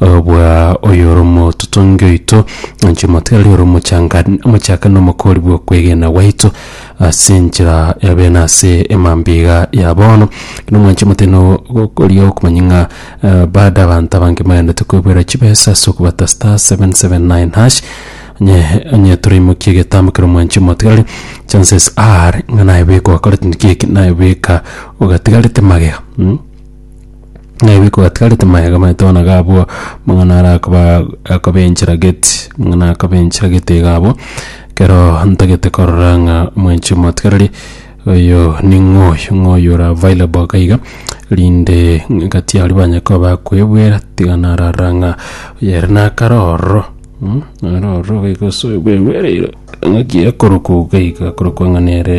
Obwa oyoromototongi oito, inche omotiga aria oromochanga mochaka nomokori bw'okwegena gwaito, ase enchera ya bena ase emambia iga ya bono, ekero mwanche motino gokoria okomanya ng'a eh, bado abanto abange mbaganete koebuera chibesa ase okobata star 779 hash onye onye toraimokia egetambo ekero mwanche motigari chances are ng'a naye bweka ogakorete naki eke naye bweka ogatigarete magega mm. Ng'a ebiiko gatigarete mayega maito bono iga abwo, mang'ana ara akoba akobenchera gate, mang'ana akobenchera gate iga abwo, ekero ntagete korora ng'a omwencho omotigareri oyo ning'o oyio, ng'o oyio ore available iga iga, rinde gati aria banye koba bakoebwera tiga narora ng'a oyere nakare ororo nere ororo iga gosuegwa egwereire ng'aki ekorokwa iga iga ekorokwa ng'a nere.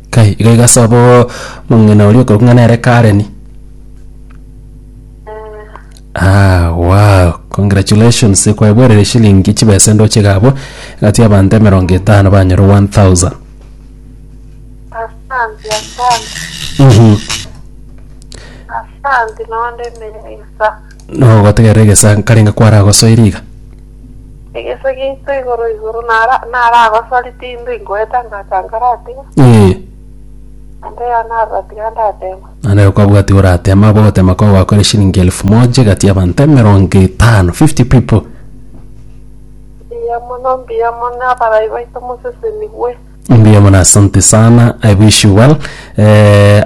Kai, iga iga ase abwo mong'ina oria okorokwa ng'a nere Karen. Ah, wow, congratulations, kwaeboerire shilingi chibesa indoche iga abwo, egati abanto emerongo etano banyore 1000. Asante, asante, Mhm. asante, noonde emereisa. Nogotegerera egesa nkarenge kwaragosoire iga. Egesa giaito igoro igoro nara naragosori tindi ngoeta ngacha nkaratiga. Ee. Ande iga naratiga ndatema. Naende okabwati oratema abo ogotema kwabo gwakore shilingi elfu moja egati y'abanto emerongo etano, fifty people. Mbuya mono mbuya mono abarai baito mosesenigwe. Mbuya mono asante sana I wish you well.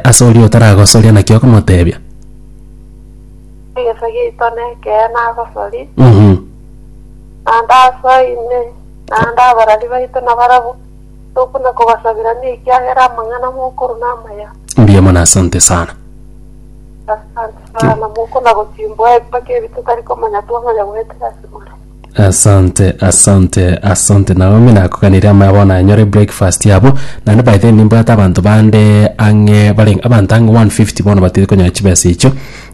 Ase oria otaragosoria naki okomotebia? Egeso giaito nekeene agosori, Mhm. naende ase oino, naende abarari baito nabarabwo, tokuna kobasabirania ekiagera amang'ana mokorwa namaya. Mbuya mono asante sana. Asante sana, mokona gochimbwa ebibe kebio totari komanya twamanya goetera ase more. Asante asante asante Naomi nakoganire amaya bono anyore breakfast yabo naende by then nimbwate abanto bande ang'e bare abanto ang'e 150 bono batiri konyora chibesa echo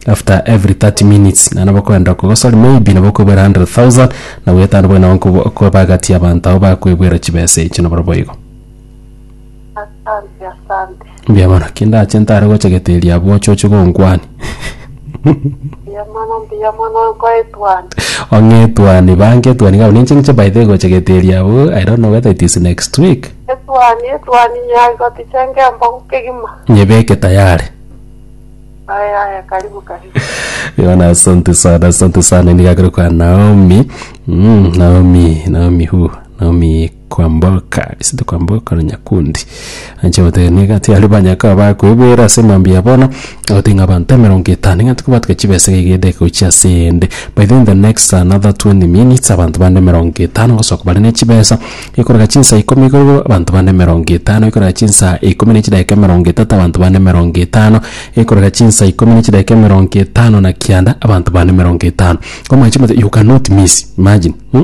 after every 30 minutes naende bakoenda kogo sorry maybe nabo okoebwera 100,000 na bwetano buna okoebagatia abanto abo bakoebwera chibesa echo naboro boigo. Asante asante. Mbuya mono. Ki ndache ntare gocha geteria abwo oche oche gonkwania. Mbuya mono mbuya mono nkoetwani. Ong'etwani bange etwani gabo ninche ng'iche by the way gocha geteria abwo I don't know whether it is next week. Etwani etwani nyagoti chenge embogu kegima. Nyebeke tayari. Aya aya karibu karibu. Yona asante sana asante sana nigakire kwa Naomi. Mm, Naomi Naomi who? Naomi Kwamboka, ase tokwamboka na Nyakundi. Anche goteba nigo ati aria banyakao bakwebera ase mambia ya bono, agoteba ng'a abanto emerongo etano nigo ati kobatuga chibesa iga iga edageka gochia ase eyende. By then the next another twenty minutes abanto bande emerongo etano bagosoka bare ne chibesa, gekoreka chinsa ikomi iga igo abanto bande emerongo etano, gekoreka chinsa ikomi na echidageka emerongo etato abanto bande emerongo etano, gekoreka chinsa ikomi na echidageka emerongo etano na kianda abanto bande emerongo etano. Omanyete you cannot miss, imagine, mh.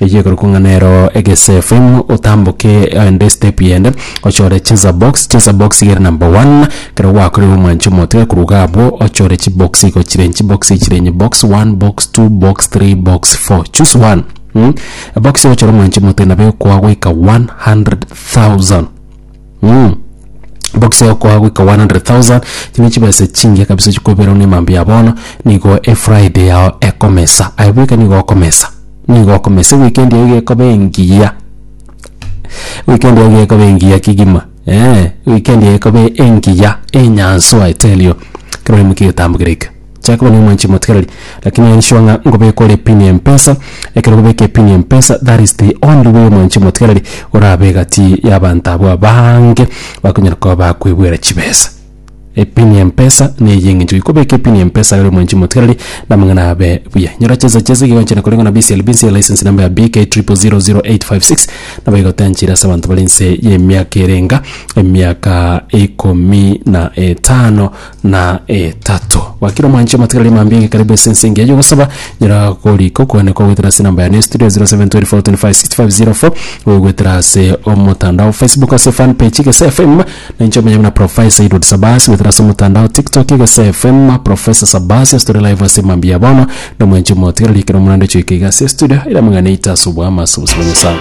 Eyio ekorokwa ng'a nero egesefe, otamboke aende step yende ochore cheza box, cheza box iga ere number one, ekero gwakorire omwanche omotiga korwa iga abwo ochore chibox igo chire inche, chibox igo chire inye, box one, box two, box three, box four, choose one mh, ebox oyochore omwanche omotiga nabo ekoa goika 100,000. Mmh. Box egokoa goika 100,000 chiri ne chibesa chingiya kabisa chikoberwa ne emambia ya bono nigo efriday yao ekomesa aye bweka nigo okomesa nigo okomesa eweekend yao iga ekoba engiya eweekend yao iga ekoba engiya kegima eeh eweekend yao ekoba engiya enyanswa i tell you ekero oimokia egetambo kere ekio. Jacob nigo omwanchire motikereri lakini aye nisure ng'a ngobeka ore pin ya mpesa ekero okobeka epin ya mpesa that is the only way omwanchire motikereri orabe egati y'abanto abwo abaange bakonyara koba bakoebwera chibesa. Epin ya mpesa neye y'eng'encho ki kobeka epin ya mpesa ore omwanchire motikereri na amang'ana abe buya. Nyora chinsa chiaye ase ekiagera gochia na koreng'wa na BCLB nse ya license number ya BK triple zero zero eight five six nabo egotenchire ase abanto bare inse y'emiaka erenga emiaka ikomi na etano. na etato. Wakira omwanche amatigari aria mambia iga karibu ase ense engiya y'ogosaba nyora korika okwane kwa goetera ase enamba yane estudio 0724256504 oyo goetera ase omotandao Facebook ase fan page Egesa FM na inche omonyene buna Professor Edward Sabasi goetera ase omotandao TikTok Egesa FM Professor Sabasi ase tore live ase mambia ya bono na omwanche omotigareri ekero omorande ochoika iga ase estudio ere amang'ana aito ase oboama ase obosio bwa Nyasae.